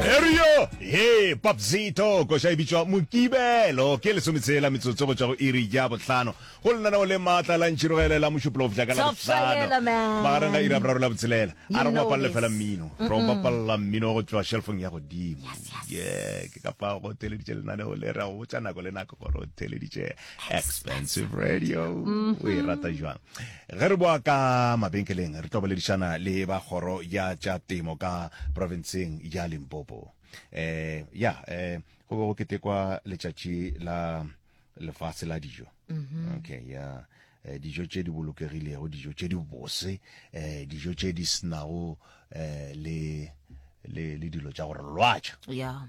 erio he papzito koša e bitšwa mokibelo ke lesometshela metsotso go tšwa go iri ja botlhano go lenaneo le maatla la ntšhirogele la mošupologo bjaka la botlhano magareng ga ira boraro la botshelela a re go bapalele fela mmino ro bapalela mmino go tšwa shelfong ya godimo ye ke kapa go theleditše lenaneo le ra go botša nako le nako gore o theleditše expensive radio o e rata jwang ge re boa ka mabenkeleng re tlo boledišana le ba kgoro ya tša temo ka provinceng ya limpopo eh ya eh go be go ketekwa letšatši la lefase la dijo okay ya eh, dijo tše di bolokegilego dijo tše di bose eh, dijo tše di senago eh, le le le dilo tša gore lwatša ya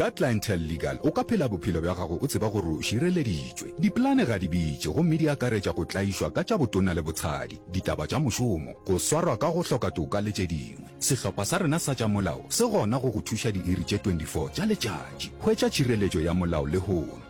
Ka Clientele Legal o ka phela bophelo bja gago o tseba gore o šireleditšwe. Dipolane ga di bitše gomme di akaretša go tlaišwa ka tša botona le botshadi, ditaba tša mošomo, go swarwa ka go hloka toka le tše dingwe. Sehlopha sa rena sa tša molao se gona go go thuša diiri tše 24 tša letšatši. Hwetša tšhireletšo ya molao lehono.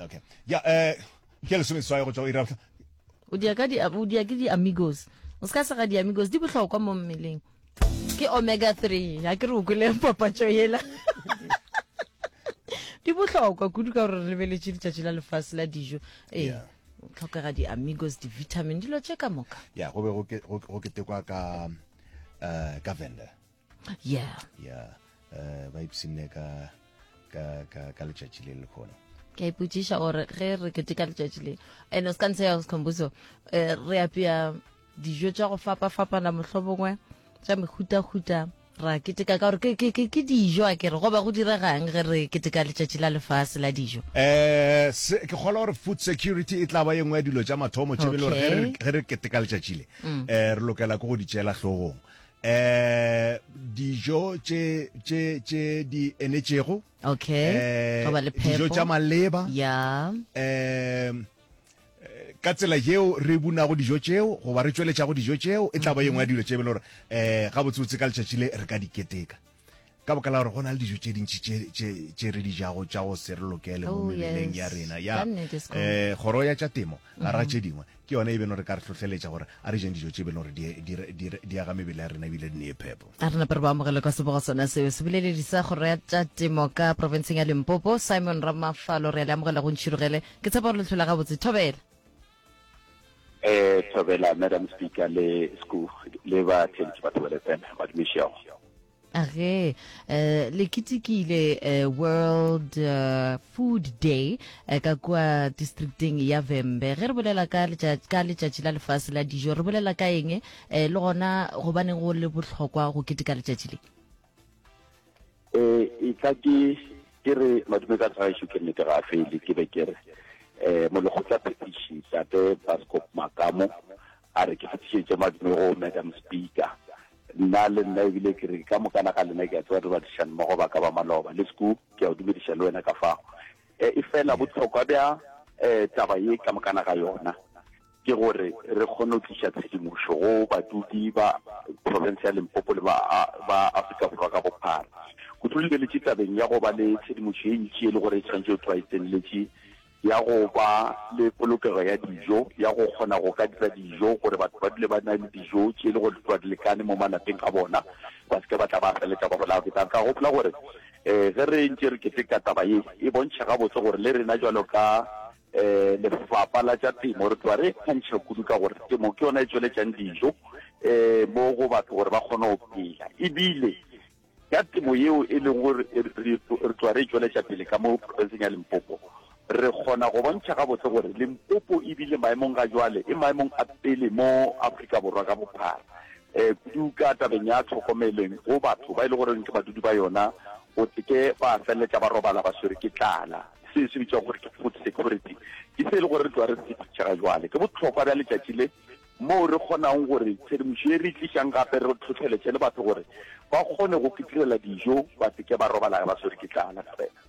okay ya eh ke le sebe tswa go tswa ira o dia ka di o dia ke di amigos o ska se ga di amigos di bohlokwa mo mmeleng ke omega 3 ya ke re o kwele papatšo yela di bohlokwa kudu ka gore re lebeletše letšatši la lefase la dijo ee yeah. tlhokega di-amigos di-vitamin dilo tše ka moka ya go be go ketekwa ka um ka vendor yeah yeah uh, ba ipsinne ka ka ka ka letšatši le le khona ke ipotsiša gore ge re kete ka letšatši le and o se ka ntshe ya sekhombuso eh, re apea dijo tša go fapa-fapana mohlobongwe tša mehuta-huta ra keteka ka gore ke dijo a kere goba go diregang ge re keteka letšatši la lefase la dijo um ke kgolwa gore food security e tla ba yengwe ya dilo tša mathomo tšebele gore ge re keteka letšatši le um re lokela ke go di tšeela tlhogong eh dijo tše tše tše di enetšego okay eh, goba le phepo dijo tša maleba ya eh ka tsela yeo re bunago dijo tšeo goba re tšweletšago dijo tšeo e tla ba yengwe ya dilo tše e be le gore um eh, gabotsebotse ka letšatši le re ka diketeka ka boka la gore go na le dijo tše dintši tše re di jago tša go se re lokele mo oh, mebeleng ya rena ya um eh, kgoro ya tša temo ga ra mm-hmm. tše dingwe ke yone e beno re ka re tlhotlheletša gore a re jeng dijo tše beno gore di aga mebele ya rena ebile di ne e phepo a re nape re ba amogele kwa sebogo sona seo se boleledi sa kgoro ya tša temo ka profenseng ya limpopo simon ramafalo re le amogela go ntšhirogele ke tshepa gore letlhola gabotse thobela E thobela madam speaker le sku le ba theletše ba thobele tsena ba dumešego ge eh, le ketekile eh, world eh, food day eh, ka kua districteng ya vembe ge re bolela ka letša- ka letšatši la lefase la dijo re bolela ka eng eh, le gona gobaneng go le bohlokwa go keteka letšatši le e e tla ke ke re madume ka gaešo ke nnete ga fele ke be ke re um molekgotla phetiši tate bascop makamo a re ke fetišetše madume go madam speaker nna le nna ebile ke re ka mokana ga lena ke a tseba re badišane mmogo ba ka ba maloba le seku ke a o dumediša le wena ka fago e fela botlhokwa bja um taba ye ka mokana ga yona ke gore re kgone go tliša tshedimošo go badudi ba profense ya Limpopo le ba, ba Afrika Borwa ka bophara. Kudu re lebeletše tabeng ya go ba le tshedimošo ye ntši e le gore e tshwanetše go tloga e tseneletše ya go ba le polokego ya dijo, ya go kgona go ka dira dijo gore batho ba dule ba na le dijo tše e le gore di tloga di lekane mo malapeng a bona, ba se ke ba tla ba feletša ba bolawa ke tlala. Ka gopola gore um ge re ntše re keteka taba ye, e bontšha gabotse gore le rena bjalo ka Lefapa la tša Temo re tloga re e kgantšha kudu ka gore temo ke yona e tšweletšang dijo mo go batho gore ba kgone go phela, ebile ka temo yeo e leng gore re tloga re e tšweletša pele ka mo profenseng ya Limpopo, re kgona go bontšha gabotse gore Limpopo e bile maemong ga jwale e maemong a pele mo Afrika Borwa ka bophara, kudu ka tabeng ya tlhokomeleng go batho ba e leng gore ke badudi ba yona, go se ke ba feleletša ba robala ba swerwe ke tlala. Se se bitšwa gore ke food security ke se e le gore re tloa re se phitšhega jwale. Ke bohlokwa bja letšatši le moo re kgonago gore tshedimošo ye re e tlišang gape re hlohleletše le batho gore ba kgone go kitirela dijo ba se ke ba robala ba swere ke tlala fela.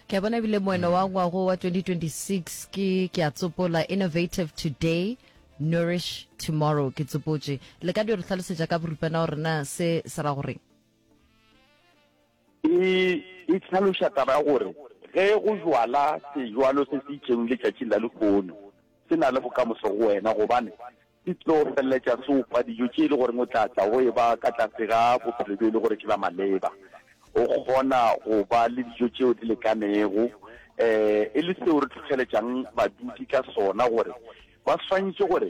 Ke a bona ebile moeno wa ngwago wa 2026 ke ke a tsopola innovative today nourish tomorrow ke tsopotše le ka di re hlalosetša ka boripana gore na se se ra goreng E, e hlaloša taba ya gore ge go jwala sejwalo se se itšego letšatšing la lehono, se na le bokamoso go wena, gobane se tlo feleletša se opa dijo tše e le goreng o tla tla o eba ka tlase ga bophelo bjo e le gore ke bja maleba. O kgona go ba le dijo tšeo di lekanego, um e le seo re hlohleletšang badudi ka sona gore ba swantšwe gore,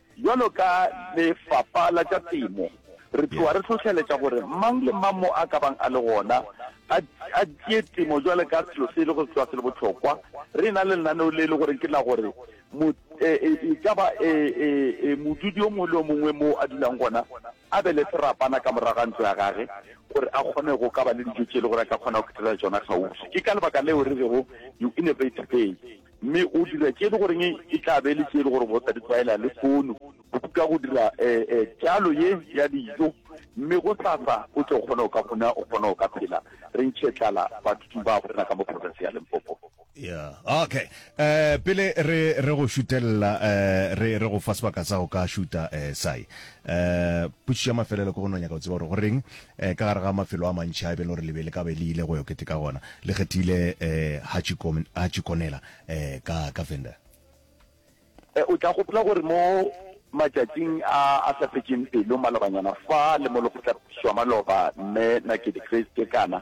Bjalo ka Lefapa la tša Temo, re tloga re hlohleletša gore mang le mang mo a ka bang a le gona a, a tšee temo bjalo ka selo se e lego se tloga se le bohlokwa. Re na le lenaneo le e le goreng ke la gore mo, e, e, e ka ba e, e, e, modudi o mongwe le o mongwe mo a dulang gona a be le serapana ka morago ga ntlo ya gage gore a kgone go ka ba le dijo tše e le gore a ka kgona go kethela tšona kgauswi. Ke ka lebaka leo re rego you innovate big. Mme o dira tše e le goreng e tla be e le tše e le gore o sa di tlwaela le fono. O ka go dira tšalo ye ya dijo, mme gosasa o tle o kgone go ka fona, o kgone go ka phela. Re ntšhe tlala bathuting ba borena ka mo profenseng ya Limpopo. Yeah, okay. Um, pele re, re go šutelela, um, re, re go fa sebaka sa go ka šuta, um, Cy. Um, potšišo ya mafelelo ke go no nyaka go tseba gore go reng Ee, ka gare ga mafelo a mantši a e be le gore le be le ka be le ile go yo keteka gona, le kgethile um Hachikonela um ka, ka Venda. Ee, o tla gopola gore mo matšatšing a a sa fetšeng pelo, malobanyana fa le mo Lekgotlaphethišo ya Maloba, Mme Nakedi Chris Kekana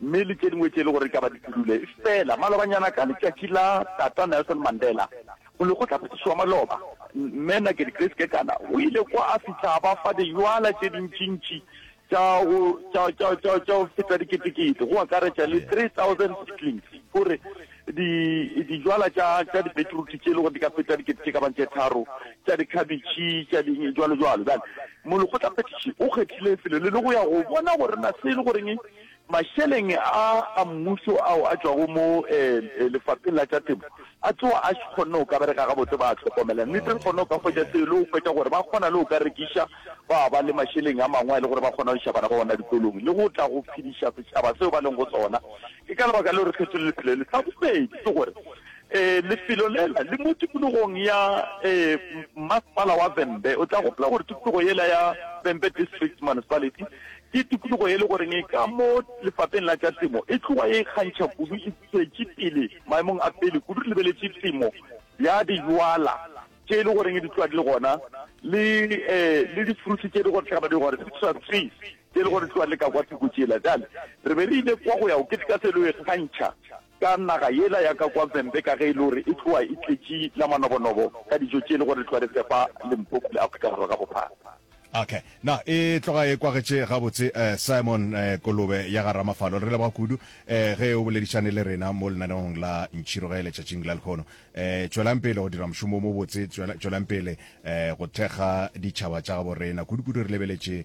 mme le tše dingwe tše e le gore e ka ba di pudule. Efela malobanyana ka letšatši la Tata Nelson Mandela, molekgotlaphethiši wa maloba, Mme Nakedi Grace Kekana, o ile kwa a fihla a ba fa diywala tše dintšintši tša go, tša, tša, tša, tša go feta diketekete, go akaretša le 3,000 seedlings, gore di, diywala tša, tša dibetiruti tše e le gore di ka feta dikete tše ka bang tše tharo, tša dikhabetšhe, tša di, jwalo jwalo. Bjale molekgotlaphethiši o kgethile lefelo le le go ya go bona gore na se e le goreng Mašeleng a a mmušo ao a tšwago mo Lefapheng la tša Temo a tsowa a kgonne go ka bereka gabotse, ba a hlokomela. Nnete re kgonne go ka hwetša seo e le go hwetša gore ba kgona le go ka rekiša ba ba le mašeleng a mangwe a e le gore ba kgona go iša bana ba bona dikolong le go tla go phediša setšhaba seo ba leng go sona. Ke ka lebaka leo re kgethile lefelo le. Sa bobedi ke gore lefelo lela le mo tikologong ya Mmasepala wa Vhembe. O tla gopola gore tikologo yela ya Vhembe District Municipality Ke tikologo ye e le goreng ka mo Lefapeng la tša Temo e tloga e ikgantšha kudu e tšwetše pele maemong a pele kudu re lebeletše temo ya dijwala tše e le goreng di tloga di le gona le le difruthi tše e le gore tšhaba di gore citrus trees tše e le gore di tloga di le ka kwa thoko tšela. Bjale re be re ile kwa go ya go keteka se e le go ikgantšha Ka naga yela ya ka kwa Vhembe ka ge e le gore e tlowa e tletše la manobonobo ka dijo tše e le gore re tlowa re fepa Limpopo le Afrika Borwa ka bophara. Ok, na e tloga e kwagetše gabotse. Simon Kolobe ya ga Ramafalo, re leboga kudu ge o boledišane le rena mo lenaneong la Ntšhiroge letšatšing la lehono. Tšwelang pele go dira mošomo wo mobotse, tšwelang pele go thekga ditšhaba tša gabo rena. Kudu-kudu re lebeletše